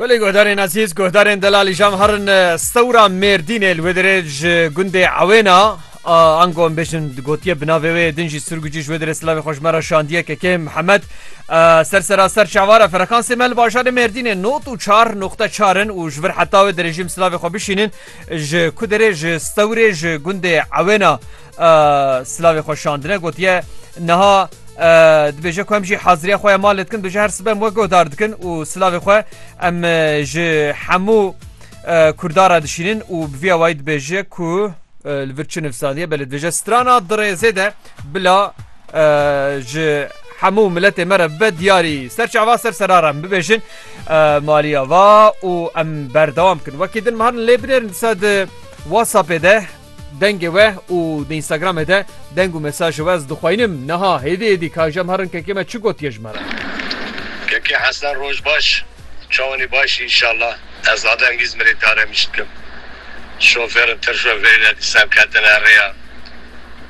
Belê guhdarên ezîz guhdarên delal îjam herin stewra mêrdînê li wê dirê ji gundê ewêna ango em bêjin gotiye bi navê wê din jî sirgûcî ji wê dirê silavê xweş me re şandiye kekê Mihemed ser sera ser çavara ferekansê me li bajarê mêrdînê not û çar noxte çarin û ji vir heta wê dirêjîm silavê xwe bişînin ji ku dirê ji stewrê ji gundê ewêna Silavê xwe şandine gotiye niha dibêje ku em jî haziriya xwe ya malê dikin bêje her sibe em we guhdar dikin û silavê xwe em ji hemû kurdara dişînin û bi vî awayî dibêje ku li vir çi nivsaliye belê dibêje strana dirêzê de bila ji hemû miletê me re bibe diyarî ser çava ser serara em bibêjin maliya va û em berdewam bikin wekî din me herin lê binêrin disa di WhatsAppê de Dengê we û di Instagramê de deng û mesajê we ez dixwayînim. Niha hêdî hêdî ka jem herin kekê me çi gotiye ji me re. Keke Hesen roj baş çawanî baş î înşallah ez zade engîz mirîdar em îş dikim şofêrin tirşo verîne dîsan ketine rêya.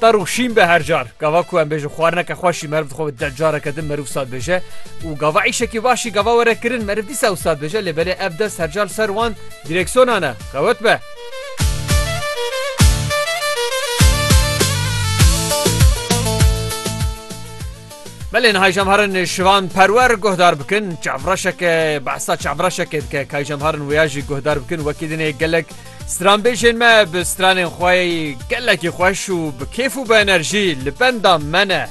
Tar û şîn be her car gava ku em bêjin xwarineke xweşî meriv dixwe bi deh careke din meriv sat bêje û gava îşekî başî gava were kirin meriv dîsa ew sat bêje lê belê ev dest her car ser wan direksiyona ne xewet be. Belê niha jemharin şivan perwer guhdar bikin çavreşeke behsa çavreşeke dike kay jemharin wêya jî guhdar bikin wekî dinê gelek Stranbêjên me bi stranên xwe gelekî xweş û bi kêf û bi enerjî li benda me ne.